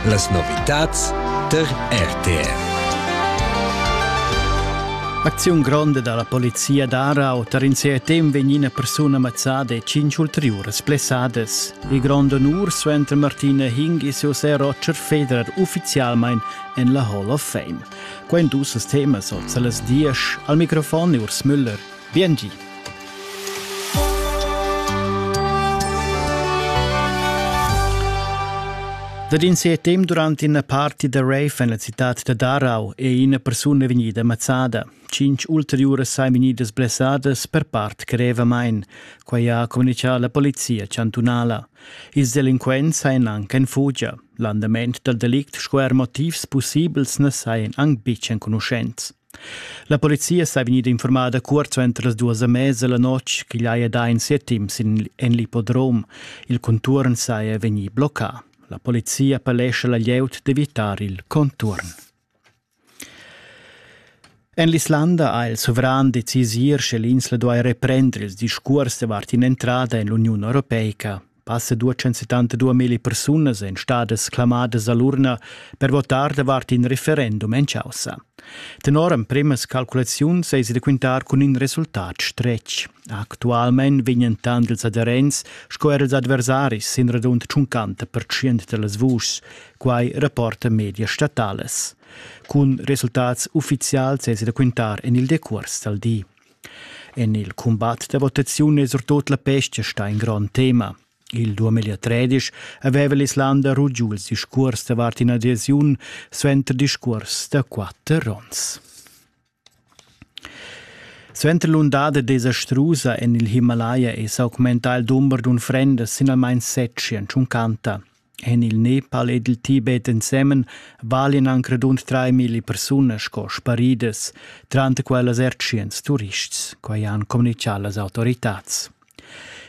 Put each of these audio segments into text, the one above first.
Las novitads tar RTR. Acziun gronda dalla polizia d'Arau tar in CRTM vegn ina persuna mazzada e cinc ulteriuras blessadas. Il grond onur suenter Martina Hing e ses sè Roger Federer ufficialmein en la Hall of Fame. Quei dus temas oz las diesch. Al microfon Urs Müller. Biengi. Dad in setem durant ina parti da rave en la citad da Darau è ina persuna vegnida mazzada. Cinc ulteriuras sain vegnidas blessadas per part grevamain. Quai ha communitgà la polizia chantunala. Ils delinquents sain anc en fugia. L'andament dal delict sco er motivs pussibels na sain anc betg enconuschents. La polizia sa vegnida informada cuort suenter las duas e mesa la notg ch'igl haja dà in setim sin en l'ippodrom. Il contuorn saja vegnì bloccà. La polizia appellescha la glieud d'evitar il contuorn. En l'Islanda ha il sovran decis ir sche l'insla duai reprender ils discurs davart in'entrada en l'Uniun Europeica. Passa duecentsettanta duamilli persunas èn stadas clamadas a l'urna per votar davart in referendum en chaussa. Tenor emprimas calculaziuns eisi da quintar cun in resultat stretg. Actualmein vegnan tant ils aderents sco er ils adversaris sin radund 50% dallas vuschs, quai rapporta medias statalas. Cun resultats uffizials eisi da quintar en il decuors dal di. En il cumbat da votaziun è surtut la pesca stà in grond tema. Il 2013 aveva l'Islanda rugiu il discurs davart ina adesiun suenter discurs da quatter onns. Suenter l'undada desastrusa en il Himalaya è s'augmentà il dumber d'unfrendas sin almain set tschient tschuncanta. En il Nepal ed il Tibet ensemen valian anc radund traimilli persunas sco sparidas, tranter quellas er tschient turists, quai han communitgà las autoritads.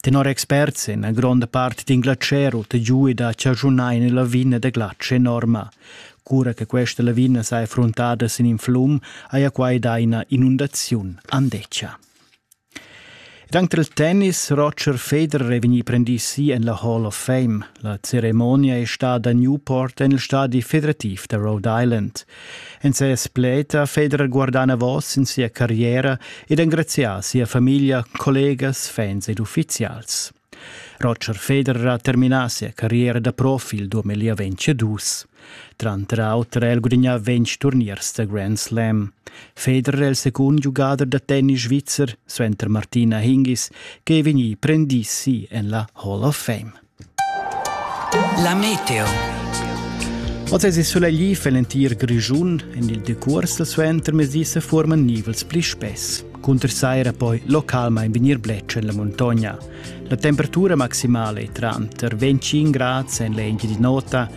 Tenor experts è una gronda parte d'inglaterra giuda a chaschunar in lavina da glatsch enorma. Cura che questa lavina saja frontada sin in flum, haja quai dà ina inundaziun andeccia. Ed anc dal tennis Roger Federer è vegnì prendì si en la Hall of Fame. La ceremonia è stada a Newport en il stadi federativ da Rhode Island. En ses pled ha Federer guardà enavos sin sia carriera ed engrazià sia famiglia, collegas, fans ed uffizials. Roger Federer ha terminà sia carriera da profi il duamillaventadus. Tranter auter ha el gudignà ventg turniers da Grand Slam. Federer è il secund giugader da tennis svizzer suenter Martina Hingis che è vegnì prendì si en la Hall of Fame. La meteo. Oz è sulegli fa l'entir Grischun. En il decurs da suentermezdi se forman nivels pli spess. Cunter saira poi localmain vegnir blec en la montagna. La temperatura maximale è tranter 25 gradi en l'engi di nota